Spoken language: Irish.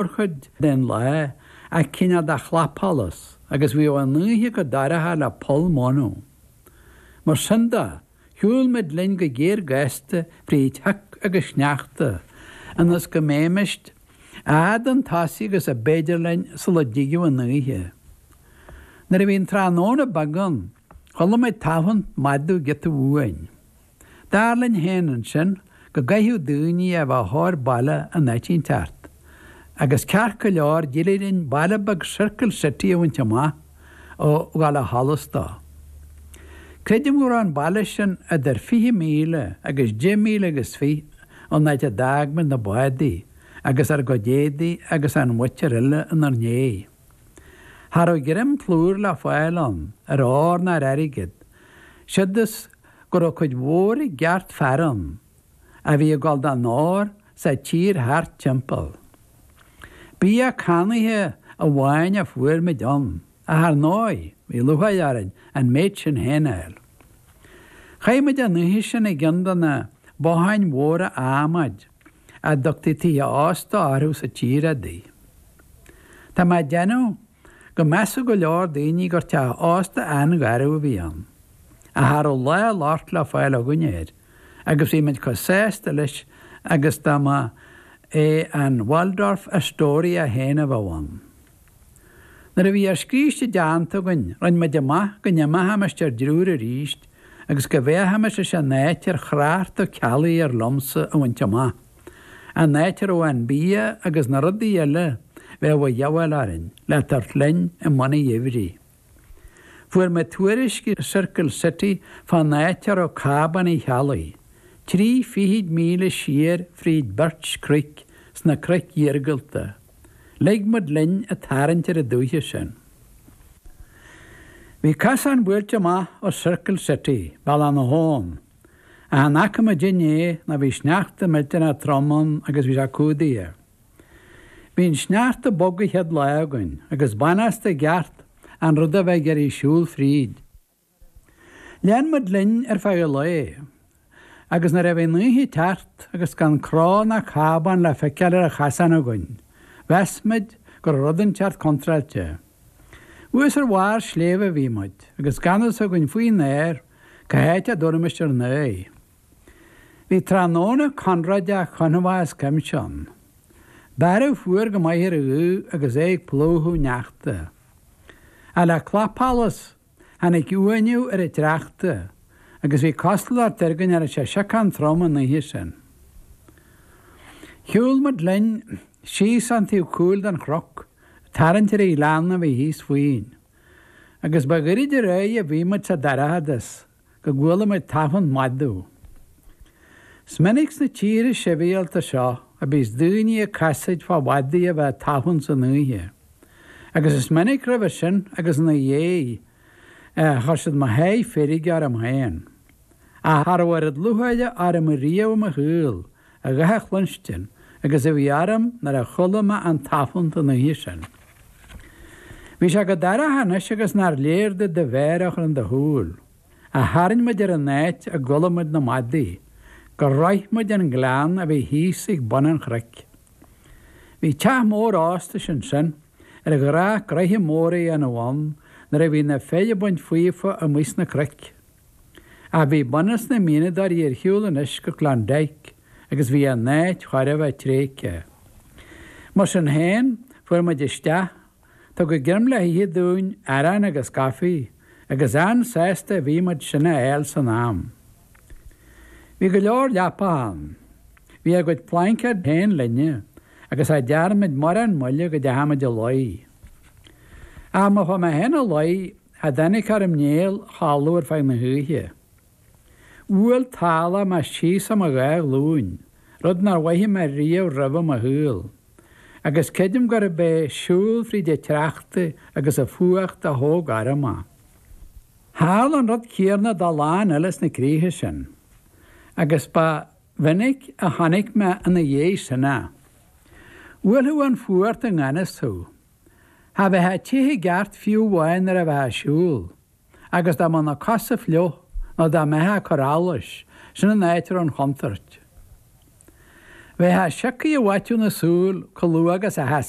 mórchuid den lá ach cineál de chlapsholas agus bhí an oíche chomh dorcha le poll móna. Mar sin de, shiúil muid linn go géar gasta fríd shioc agus sneachta ionas go mbeimis a fhad chun tosaigh agus a b'fhéidir linn sula dtigeadh an oíche. Nuair a bhí an tráthnóna beag ann, chuala muid tafann madadh giota uainn. Dar linn féin ansin go gcaithfeadh daoine a bheith chóir baile in áit inteacht, agus ceart go leor d'éirigh linn baile beag Circle City a bhaint amach ag gabháil ó sholas dó. Creidim go raibh an baile sin idir 20 míle agus 10 míle agus fiche ón áit a d'fhág muid na bádaí agus ár gcuid éadaí agus an mhuintir eile inár ndiaidh. Cha raibh greim plúir le fáil ann ar ór ná ar airgead, siúd is go raibh cuid mhór i gceart fear ann a bhí ag gabháil don ór sa tír thart timpeall. Bia cannaithe amháin a fuair muid ann, ach ar ndóigh, bhí lúcháir orainn an méid sin féin a fháil. Chaith muid an oíche sin i gceann de na botháin mhóra adhmaid. a dtugtaí tithe ósta orthu sa tír adaí. Tá mé ag déanamh go measfadh go leor daoine gur teach ósta an-gharbh a bhí ann, ach cha raibh lá locht le fáil againn air agus bhí muid chomh sásta leis agus dá mba é an Waldorf Astoria féin a bheadh ann. Nuair a bhí ár scíste déanta againn, rinn muid amach go n-imeochaimis ar dtriúr arís agus go bhféachaimis leis an áit ar thrácht Ó Ceallaigh air liomsa a bhaint amach, an áit a raibh an bia agus na rudaí eile a bheadh a dhíobháil orainn le tabhairt linn i mbun an gheimhridh. Fuair mé tuairisc i Circle City fán áit a raibh cábán Uí Cheallaigh, trí fichid míle siar fríd Birch Creek sna cnoic iargúlta. Lig muid linn ag tarraingt ar an dúiche sin. Bhí casán buailte amach ó Circle City, bealach na habhann, ach in aice mo dhin é ná bhí sneachta millteanach trom ann agus bhí sé cumhdaithe. Bhí an sneachta bog an chéad lá againn agus b'anásta i gceart an rud a bheith ag iarraidh siúl fríd. Lean muid linn ar feadh an lae agus nuair a bhí an oíche ag teacht agus gan cró ná cábán le feiceáil ar an chasán againn, mheas muid go raibh rud inteacht contráilte. Thuas ar bharr sléibhe a bhí muid agus gan fhios againn faoin aer cá háit a dtabharfaimis ár n-aghaidh. Bhí tráthnóna conróideach confach as cuimse ann. Bearradh fuar go maith ar an ghaoth agus é ag plúchadh sneachta. Ach le clapsholas, tháinig uaineadh ar an tsneachta agus bhí cosúlacht air go ndéanfadh sé siocán trom an oíche sin. Shiúil muid linn síos an taobh cúil den chnoc, ag tarraingt ar an ghleann a bhí thíos fúinn, agus ba ghairid dá réir a bhí muid sa dorchadas go gcuala muid tafann madadh. Is minic sna tíortha sibhialta seo a bíos daoine ag casaoid fá mhadaidh a bheith ag tafann san oíche, agus is minic roimhe sin agus ina dhiaidh é a chuir siad mo sháith feirge orm féin, ach cha raibh oiread lúcháire orm riamh i mo shaol a dhath a chluinstin agus a bhí orm nuair a chuala mé an tafann an oíche sin. Bhí sé chomh dorcha anois agus nár léir duit do mhéar a chur in do shúil, ach tharraing muid ar an áit a gcuala muid na madaidh, gur shroich muid an gleann a bhí thíos ag bun an chnoic. Bhí teach mór óstais ansin, ar ghnách gnoithe mór a dhéanamh ann nuair a bhí na fir ag baint faofa amuigh sna cnoic. Ach bhí bunús na mianadóirí ar shiúl anois go Klondike agus bhí an áit chóir a bheith tréigthe. Mar sin féin, fuair muid isteach, tugadh greim le hithe dúinn, arán agus coffee, agus an-sásta a bhí muid sin a fháil san am. Bhí go leor leapacha ann. Bhí ár gcuid plaincéad féin linne agus cha dtearn muid mórán moille go dteachaidh muid a luí. Ach má chuaigh mé féin a luí, cha dtáinig orm néal a chodladh ar feadh na hoíche. Bhuail tálach mé thíos in mo dhá ghlúin, rud nár mhothaigh mé riamh roimhe i mo shaol, agus creidim gurb é siúl fríd an tsneachta agus an fuacht a thóg orm é. Tharla an rud céanna dá lán eile sna críocha sin, agus ba mhinic a chonaic mé ina dhiaidh sin é. Bhuailfeadh an fuacht i ngan fhios thú, Cha bheitheá te i gceart fiú amháin nuair a bheitheá a' siúl, agus dá mbeadh na cosa fliuch nó dá mbeitheá a' cur allais, sin an áit a raibh an chontuirt. Bheitheá sioctha i bhfaiteadh na súl, codladh agus athas.